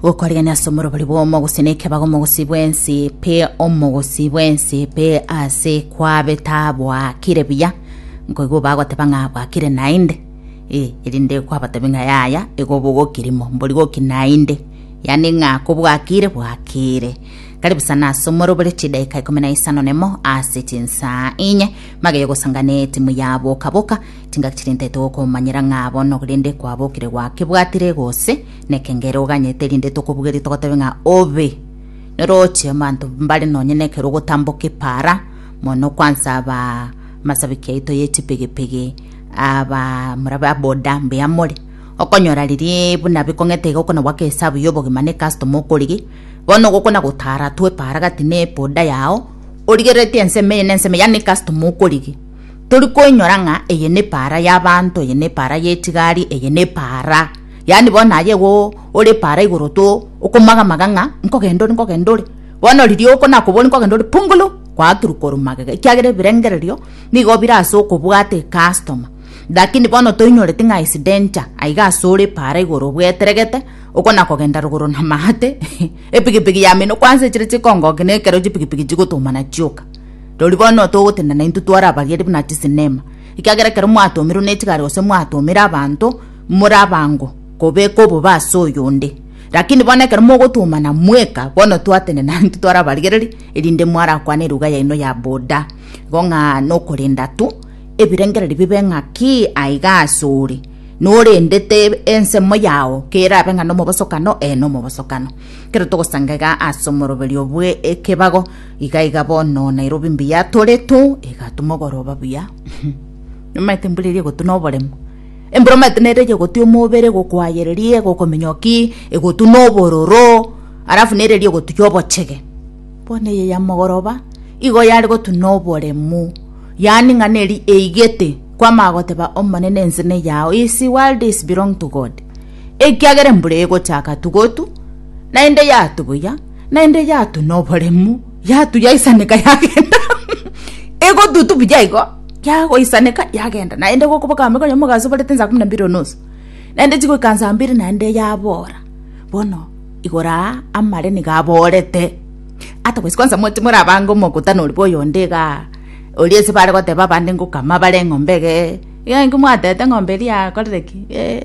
gokorigania ase omorobori bw'omogosi nekeba gomogosi bwensi pe omogosi bwensi pe ase kwabeta bwakire buya nkoigwa bagoteba ng'a bwakire naende eh, erinde kwabatebi ng'a yaya igo bogokirimo mbori goki naende yaani ng'a kobwakire bwakire karibu sana ase omorobori chidakika ikomi na isano nemo ase chinsa inye mageye gosangana etimu ya boka boka Chingaki chiria ntaete gokomanyera ng'a bono rende kwabokire gwakebwatire gose nekengere oganyete rinde tokobugerie togotebe ng'a obe noroche abanto mbare nonye nekero ogotamboka epara mono kwansa aba masabiki yaito ye chipigipigi aba morabe aboda mbuya more okonyora riria buna bikong'ete iga okona goaka esabu ya obogima na ecustoma okorigia bono gokona gotara tu epara gati ne eboda yao origereretie ensemo eye na ensemo eye yaani ecustoma okorigia. Tori koinyora ng'a eye nepaara y'abaanto, eye nepaara y'etigari, eye nepaara. Yaani bono aye igo ore epaara igoro to okomaga maga ng'a nkogenda ore nkogenda ore. Bono riria oko nakobori nkogenda ore pungulu, kwaaturuka ore magega ekiagera ebirengererio nigo bire ase okobwata ecustomer. Lakini bono toinyoreti ng'a is danger aiga ase ore epaara igoro obweteregete okona kogenda rogoro na maate, epigipigi yamenwa kwansa echire chikongoki na ekero chipigipigi chigotumana chioka. Rirorio bono togotenena intwe tware abageni buna chisinema, ekiagera ekero mwatomirwe nechigari gose mwatomire abanto, more abango kobeka obobe ase oyonde. Lakini bono ekero mogotomana mweka, bono twatenena intwe tware abarigereri, erinde mwarakwane eruga yaino ya boda, igo ng'a nokorenda tu ebirengererio bibe ng'aki aiga ase ore, norendete ensemo yao kerabe ng'a nomobosokano, ee nomobosokano. Ekero togosanga iga ase omoroberio bw'ekebago. Iga iga bono Nairobi mbuya tore to egatu mogoroba buya nomaete mbura eria egotuna oboremo embura omaete nere eria egotia omobere egokwayereria egokomenya ki egotuna obororo alafu nere eria egotukia obochege bono eye ya mogoroba igo yare gotuna oboremu yaani ng'a neri eigete kwamanya goteba omonene ense neyao is world is belong to God ekiagera embura egochaka tugotu naende yatu buya. Naende yatu noboremu, yatu yaisaneka yagenda, egotutu buya igo, yagoisaneka yagenda, naende gokoba kambia konya omogaso obarete saa kumi na mbili onusu, naende chigoika saa mbili naende yabora, bono igoro aa amare nigo aborete, otherwise kwansa moche more abange omokutano oria bwa oyonde igaa, oria ase bare goteba abande ngokama bare eng'ombe egee, iga inki mwatete ng'ombe eria yakorire ki eeh.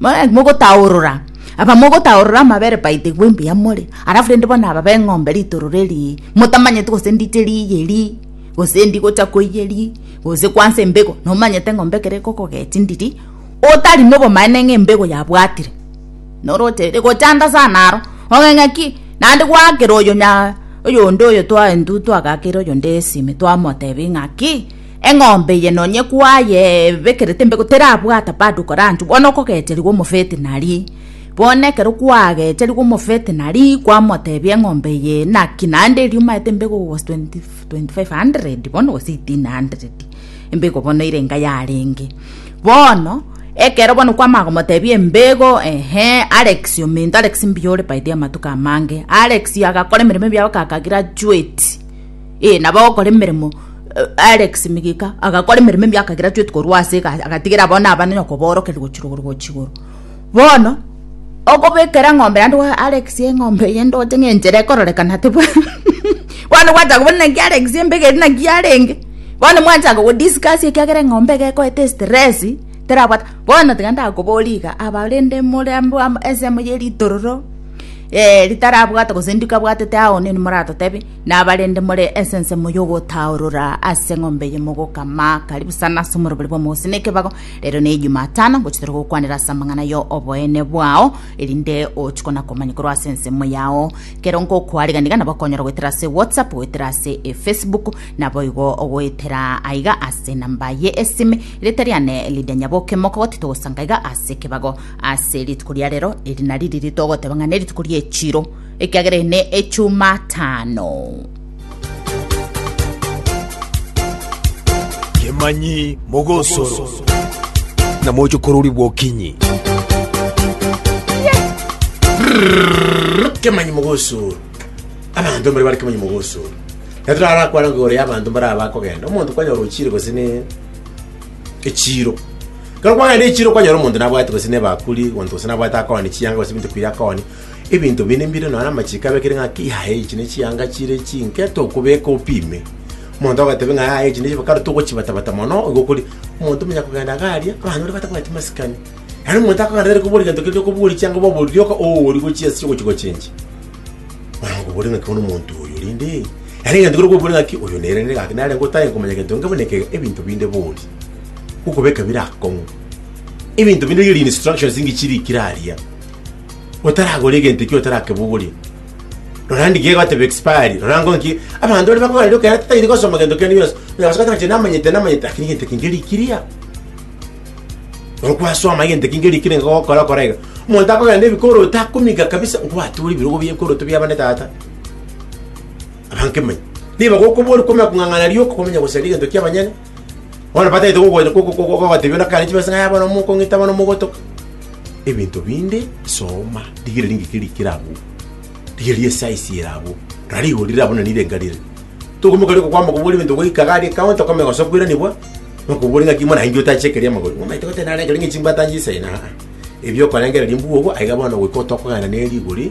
Mare mogotaorora, abamogotaorora amabere baitegwe mbuya more, alafu rende bono aba b'eng'ombe ritororo eri, motamanyeti gose ndiche riiyi eri, gose ndi gocha koiya eri, gose kwansa embego, nomanyete eng'ombe ekero egokoga chindiri, otari nobomaene ng'a embego yabwatire, noroche ere gochanda sana aro, ong'e ng'aki naende gwaakera oyo nya oyonde oyo twa intwe twagaakera oyonde esimi twamotebia ng'aki. Eng'ombe eye nonye kwayebekerete embegu terabwata bado koranchwa bono okogecherigwa omofetinari. Bono ekero kwagecherigwa omofetinari kwamotebia eng'ombe eye naki naende erio omaete embegu was 2500 bono gose 1800 embegu bono ere enga yarenge. Bono ekero bono kwamanya komotebia embegu ehe Alex ominto Alex mbuya ore by the way amatuko amange Alex agakora emeremo ebiago kaka graduate. Ee, nabo ogokora emeremo eh, Alex migika agakora emeremo emiaka kera twete korwa ase agatigera abana abana nyoko borokerwa gochira igoro gochi igoro bono okobekera ng'ombe yande wa Alex eng'ombe eye ndoche ng'enchera ekororekana tebwa bono gwachaka kobona naki Alex embegeri naki arenge bono mwachaka go discuss ekiagera eng'ombe egekoete stress terabwata bono tiga ndakobori iga abarende more ensemo ye ritororo eh ritarabwate gose ndikabwatete ao nini moratotebi Nabarende more ense ensemo y'ogotaorora ase eng'ombe eye mogokama, karibu sana ase omorobori bw'omogusii na ekebago, rero ne Ejumatano ngochitera gokwanera ase amang'ana ya oboene bwao, erinde ochi kona komanya korwa ase ensemo yao. Kero ngokoariganiga nabo okonyora goetera ase WhatsApp, goetera ase eFacebook, naboigo goetera aiga ase enamba ye esime. Erieta riane Lydia Nyaboke, mokogoti togosanga iga ase ekebago ase rituko ria rero, eri nari riria togoteba ng'a nerituko ri'echiro. Ekiagera eye ne Echumatano. Kemanyi mogosoro. Na mochokorori bw'okinyi. Kemanyi mogosoro. Abanto mbare bare kemanyi mogosoro. Na torarakwana ng'a igoro y'abanto mbare aba akogenda. Omonto kwanyora ochire gose ne echiro. Ekero kwagenda echiro kwanyora omonto nabwati gose nebakuri, omonto gose nabwate akooni chianga gose ebinto ebikwire akooni. Ebinto binde mbire nonye namachiko abekire ng'a ki yaya echi ne chianga chire chinke tokobeka opime. Omonto agatebe ng'a yaya echi ne chianga kare togochibatabata mono igo kori omonto omenya kogenda iga aria abana baria batabwati masikani. Yaani omonto akogenda tari kobori gento keria okobori chianga oba obori rioka oori gochia ase ogochi gochinji. Mara nkobori ng'a ki bono omonto oyo rinde yaani egento kere okobori ng'a ki oyo nere nere gaki nare ngotae nkomanya gento nge buna ekega ebinto binde bori. Gokobeka bire akong'u. Ebinto binde riria ri instructions ngichi rikire aria. otaragore egento ekio otarakebogoria rora ndi gegoteba expiry rora ngo nki abanto bari bakogarira okera tatairi gosoma gento kende yonsi oyabasaka tanche namanyete namanyete lakini gento kinge rikiria rora kwasoma egento kinge rikiria enga gokora kora iga omonto akogenda ebikoro otakomiga kabisa nkwature ebirogo biekoroto bia bane tata abanke manya niba gokobori komenya kong'ang'ana rioka komenya gosaria egento kia abanyene Bono batagete gogocha gogotebiwa na kare chibesa ng'a bono mokong'ita bono mogotoka. Ebinto binde soma, rigereria ng'iki rikire abwo. Rigereria esize ere abwo. Rora rigori rire abwo na rirenga rire. Tokomoka rire okokwama kobua ebinto goika iga aria counter okame gose okwiranibwa, nokobua ng'aki mono nainche otache ekeria amagori. Omanyete gose nare ekeria ng'echimbatanchise aa. Ebio okorengereria mbwogo aiga bono goika otokogana ne rigori